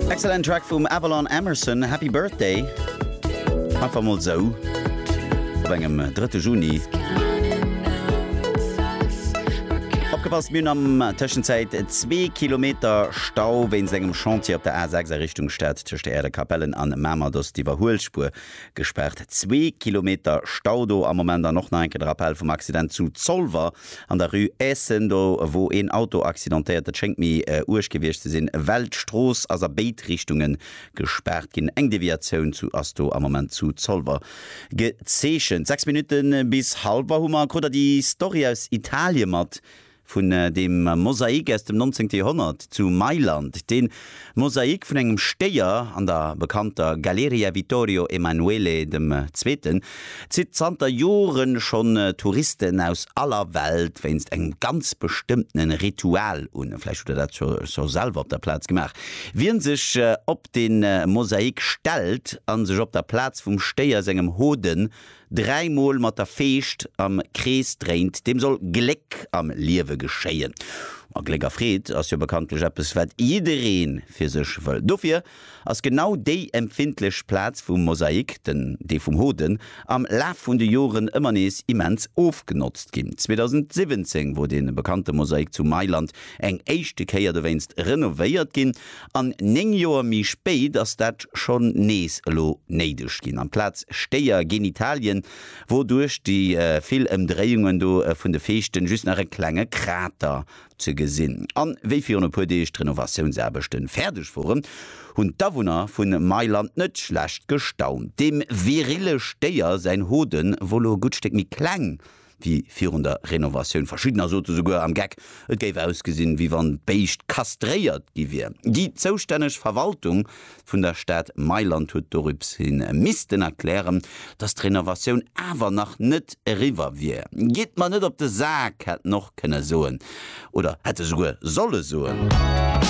Excellent Track vum Avalon Emerson, Happy Birthday. Einfach mol sou op engem drëtte Juni. Opgepasst, mir hunn am Tëschenzäit zwee Kilometer Stau wéinst engem Chantier op der A 6 a Richtung Stad. Tëscht der Erdekapellen an Mamer ass d'Iwwerhuelspuer gespaart. Zwee Kilometer Stau do am Moment. An och nach eng Kéier de Rappell vum Accident zu Zolwer. An der Rue Eessen, do wor een Auto accidentéiert. Et schéngt méi uerg gewiescht ze sinn, well d'Strooss ass a béid Richtunge gespaart ginn. Eng Deviatioun zu ass do am Moment zu Zolwer gezeechent. Sechs Minutte bis Halwer hu mer. Krut der déi Story aus Italie mat vun deem Mosaik aus dem 19. Joerhonnert zu Mailand, deen, Mosaik vun engem Stéier an der bekannter Galleria Vittorio Emanuele dem Zweeten zitt zanter Jore schonn Touristen aus aller Welt wéinst engem ganz bestëmmtene Ritual un. Vläicht hutt der dat scho selwer op der Plaz gemaach. Wien sech op de Mosaik stellt a sech op der Plaz vum Stéier sengem Hoden 3 mol mat der Feescht am Krees dréint, deem soll Gléck am Liewe geschéien. A Gléck a Freed ass jo bekanntlech eppes, wat jidderee fir sech wëll. Dofir ass genau déi empfindlech Plaz vum Mosaik, den Dee vum Hoden, am Laf vun de Joren ëmmer nees immens ofgenotzt ginn. 2017 wor dee bekannte Mosaik zu Mailand eng éischte Kéier dowéinst renovéiert ginn an 9 Joer méi spéit ass dat schonn nees elo néideg ginn. Amplaz Stéier, Genitalien, wor duerch déi vill Ëmdréiungen do vun de Feeschten just nach e klenge Krater ze gesinn. An wéi virun e puer Deeg d'Renovatiounsaarbechten fäerdeg woren, hunn d'Awunner vun Mailand net schlecht gestaunt. Dem virile Stéier säin Hoden wor elo e gutt Stéck méi kleng. wéi virun der Renovatioun. Verschiddener sote souguer am Geck, et géif ausgesinn, wéi wann d'Béischt kastréiert gi wier. Déi zoustänneg Verwaltung vun der Stad Mailand huet dorips hin missten erklären, datt d'Renovatioun awer nach net eriwwer wier. Gitt mer net op de Sak, hätt en och kënne soen oder hätt e souguer solle soen.